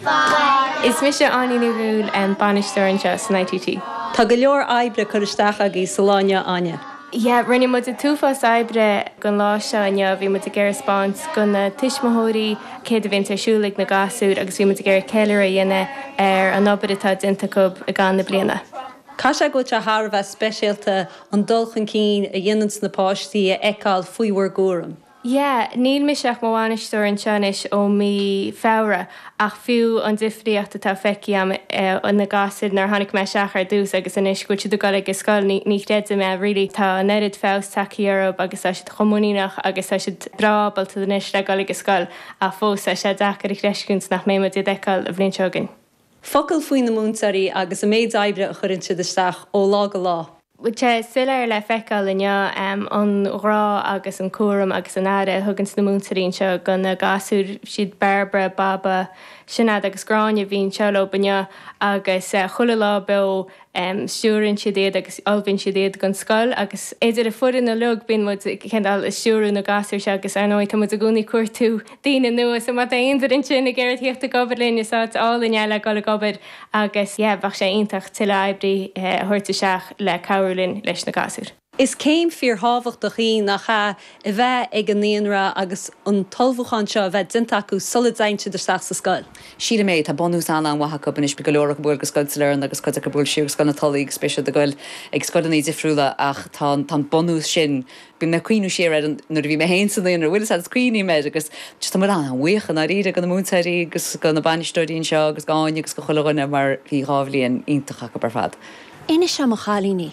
Bharra. Is mise Áine Ní Dhúill, bainisteoir anseo san ITT. Tá go leor oibre curtha isteach agaibh sa lá inniu, Áine. Yeah, rinne muid an t-uafás oibre gon lá seo inniu. Bhí muid ag iarraidh a spáint go na tuismitheoirí céard a bhíonns ar siúl ag na gasúir agus bhí muid ag iarraidh ceiliúradh a dhéanamh ar an obair atá déanta acu i gcaitheamh na bliana. Tá sé go deo thar a bheith speisialta an dul chun cinn a dhéananns na páistí a fheiceáil faoi bhur gcúram. Yeah, níl mise ach i mo bhainisteoir anseo anois ó mí Feabhra, ach fiú an difríocht atá feicthe agam ó na gasúir nuair a tháinig mé isteach ar dtús agus anois go bhfuil siad ag dul ag an scoil, ní, ní chreidim é really. Tá an oiread feabhas tagtha orthub agus tá siad chomh muiníneach agus tá siad breá ábalta anois le dhul ag an scoil, ach fós tá sé deacair a chreistiúint nach mbeidh muid á bhfeiceáil an bhliain seo chugainn. Focal faoi na múinteoirí agus an méid oibre a chuireann siad isteach ó lá go lá. Tá sé soiléir le feiceáil inniu an grá agus an cúram agus an aire a thuganns na múinteoirí anseo do na gasúir, siad Bairbre, Baba, Sinéad agus Gráinne a bhíonn anseo leob inniu agus chuile lá beo. stiúrann siad iad agus ullmhaíonn siad iad don scoil agus idir an fhoireann uiliog bíonn muid cineál ag stiúradh na gasúir seo agus ar ndóigh tá muid i gcónaí ag cuartú daoine nua so má tá aon duine ansin ag iarraidh a thíocht ag obair linn is áit álainn í le dhul ag obair agus yeah bheadh sé iontach tuilleadh oibrí a thabhairt isteach le cabhrú linn leis na gasúir. Is céim fíorthábhachtach í, nach ea, a bheith ag an naíonra agus an t-ullmhúchán seo a bheith déanta acu sula dtéann siad isteach sa scoil? Sílim é. Tá bunús an-an-mhaith acu anois, go leor acu ag gabháil go Scoil Sailearna agus cuid acu ag gabháil siar go Scoil na Tulaí agus beidh siad ag goil ag scoileanna difriúla ach tá an bunús sin, bíonn mé ag cuimhniú siar ar nuair a bhí mé féin sa naíonra, bhuel an fhaid is a chuimhním air agus just tá muid an-bhuíoch i ndáiríre go na múinteoirí agus go na bainisteoirí anseo agus go hÁine agus go chuile dhuine mar bhí dhá bhliain iontach acu ar fad. Inis liom a chailíní,